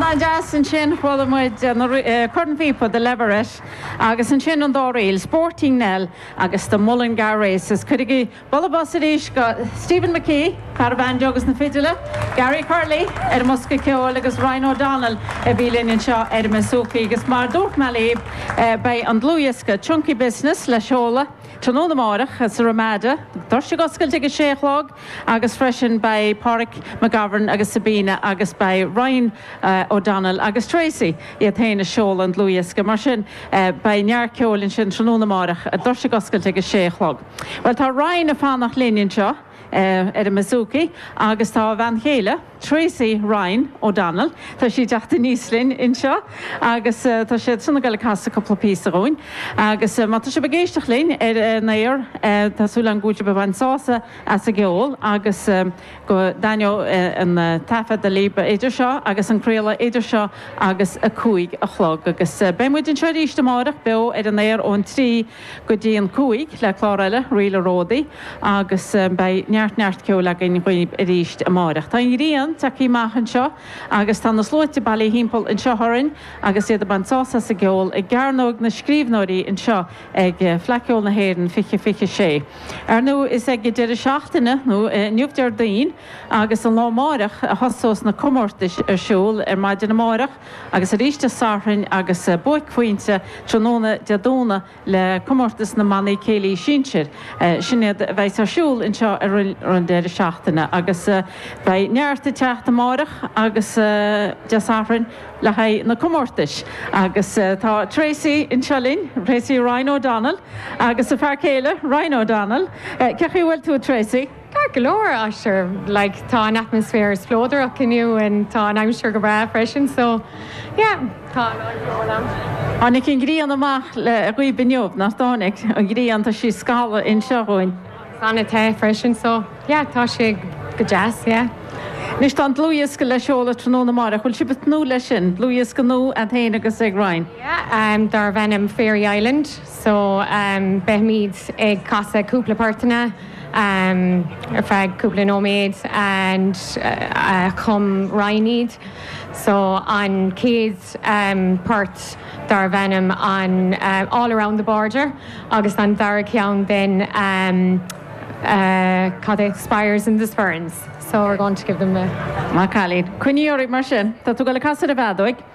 An-deas ansin chuala muid cornphíopa The Leverette agus ansin an dá ríl, Sporting Nell agus The Mullingar Races. Cuirigí bualadh bos arís go Stephen McKee, fear an bhanjo agus na fidile, Gary Curley ar an mbosca ceoil agus Ryan O'Donnell a bhí linn anseo ar an mbasúcaí agus mar a dúirt mé libh beidh an dlúthdhiosca Chunky Business le seoladh tráthnóna amárach sa Ramada, doirse ag oscailt ag a sé a chlog. agus freisin beidh Páraic McGovern agus Sabina agus beidh Ryan O'Donnell agus Tracey iad féin ag seoladh an dlúthdhiosca. Mar sin beidh neart ceoil ansin tráthnóna amáireach, doirse ag oscailt ag a sé a chlog. Bhuel tá Ryan ag fanacht linn anseo ar an mbouzouki agus tá a bhean chéile, Tracey Ryan O'Donnell. Tá sí ag teacht aníos linn anseo agus tá siadsan ag goil ag casadh cúpla píosa dhúinn agus má tá sibh ag éisteacht linn ar an aer tá súil agam go bhfuil sibh ag baint sásamh as an gceol agus go dtaitneoidh an taifeadadh libh idir seo agus an craoladh idir seo agus a cúig a chlog agus beidh muid anseo arís amárach beo ar an aer ón trí go dtí an cúig le clár eile Ríl an Ródaí agus beidh neart neart ceoil againn dhaoibh arís amáireach. Tá an ghrian ag tíocht amach anseo agus tá na sluaite bailithe thimpeall anseo orainn agus iad ag baint sásamh as an gceol i gCearnóig na Scríobhnóirí anseo ag Fleadh Ceoil na hÉireann 2026. Ar ndú is ag deireadh seachtaine nó inniu Déardaoin agus an lá amáireach a thosós na comórtais ar siúl ar maidin amáireach. Agus arís Dé Sathairn agus buaicphointe tráthnóna Dé Domhnaigh le comórtas na mbannaí céilí sinsir. Sin iad a bheidh ar siúl anseo ar an deireadh seachtaine agus beidh neart ag teacht amárach agus Dé Sathairn le haghaidh na comórtais. Agus tá Tracey anseo linn, Tracey Ryan O'Donnell agus a fear céile Ryan O'Donnell. Cé chaoi a bhfuil tú a Tracey? Ceart go leor, sure, like, tá an atmaisféar spleodarach inniu and tá an aimsir go breá freisin, so, yeah, tá an aird go mór ann. Tháinig an ghrian amach le haghaidh inniu, nach dtáinig? An ghrian, tá sí ag scalladh anseo dhúinn. Agus an-te freisin, so, yeah, tá sé go deas, yeah. Anois, tá an dlúthdhiosca le seoladh tráthnóna amárach, bhfuil sibh ag tnúth leis sin? Dlúthdhiosca nua a'd féin agus ag Ryan? Yeah, um, darb ainm Fairy Island. so beimid ag casadh cúpla portanna ar feadh cúpla nóiméad and chum Ryan iad so an chéad port darbh ainm an All Around the Border agus an dara ceann then cad é Spires in the Sperrins so we're going to give them a. Maith an cailín. Coinnigí oraibh mar sin. Tá tú ag dul ag casadh ar an bhfeadóig.